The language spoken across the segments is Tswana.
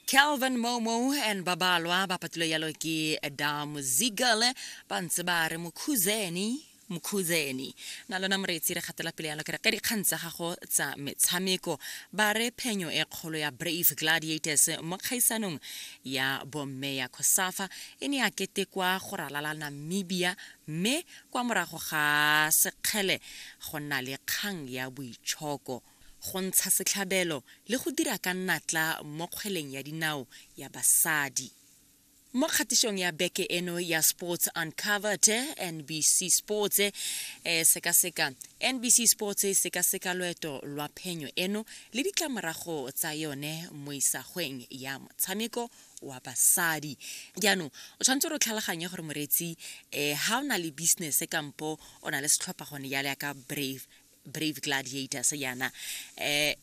calvin momo and babalwa ba patile yalo ke dam zigal ba ntse ba re mokhuzeni mokhuzeni na lona moreetsi re gatela pele yalo kere ka dikgang tsa gago tsa metshameko ba re phenyo e kgolo ya brave gladiators mo kgaisanong ya bomme ya cosafa e ne ya ketekwa go ralala namibia mme kwa morago ga sekgele go nna le kgang ya boitshoko go ntsha setlhabelo le go dira ka natla mo kgweleng ya dinao ya basadi. Mo kgatišong ya beke eno ya Sports Uncovered, NBC Sports e eh, sekaseka NBC Sports e sekaseka loeto lwa phenyo eno le ditlamorago tsa yone mo isagweng ya motshameko wa basadi jaanong o tshwanetse gore o tlhaloganye gore moreetsi um eh, ga o na le business kampo o na le setlhopha gone jale ya ka brave brave gladiators yana eh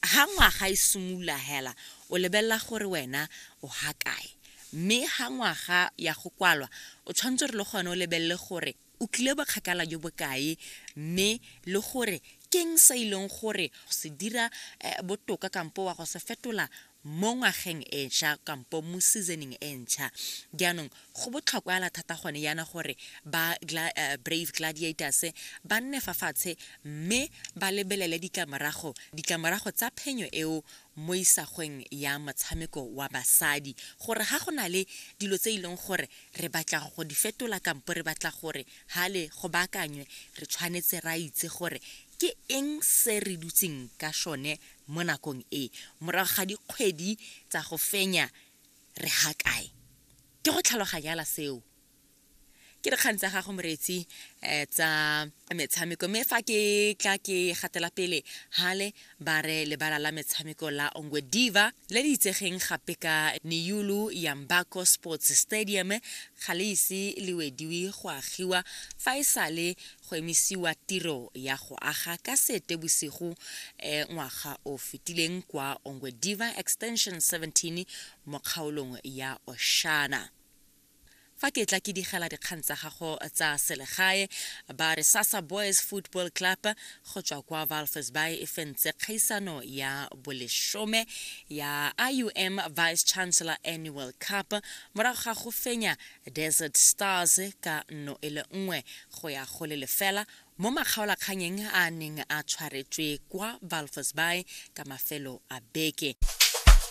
ha ngwaga e simolola hela o lebelela gore wena o ha kae mme ha ngwaga ya go kwalwa o tshwanetse re le gone o lebelele gore o tlile bokgakala jo bokae mme le gore keng se e leng gore go se dira eh, botoka kampo wa go se fetola mo ngwageng e ntšha kampo mo seasoning e ntšha jaanong go botlhokwa ala thata gone yana gore ba gla, uh, brave gladiators ba nne fa fatshe mme ba lebelele ditlamorago ditlamorago tsa phenyo eo mo isagweng ya motshameko wa basadi gore ga go na le dilo tse e leng gore re batla go di fetola kampo re batla gore ga le go baakanywe re tshwanetse ra itse gore ke eng se re dutseng ka sone mo nakong e morago ga dikgwedi tsa go fenya re ha kae ke go tlhaloganyala seo ke dikgang tsa gago moretsi um tsa metshameko mme fa ke tla ke gatela pele hale ba re lebala la metshameko la ongwe diva le le itsegeng gape ka neyulu yambako sports stadium ga le ise le wediwe go agiwa fa e sale go emisiwa tiro ya go aga ka seetebosigo eh, ngwaga o fetileng kwa ongwediva extension 17 mo kgaolong ya oshana fa ke tla ke digela dikgang tsa gago tsa selegae ba re sasa boys football club go tswa kwa valfes bay e fentse kgaisano ya bolesome ya ium vice chancellor annual cup morago ga go fenya Desert Stars ka nno e le nngwe go ya go le lefela mo makgaolakganyeng a neng a tshwaretswe kwa Walvis Bay ka mafelo a beke.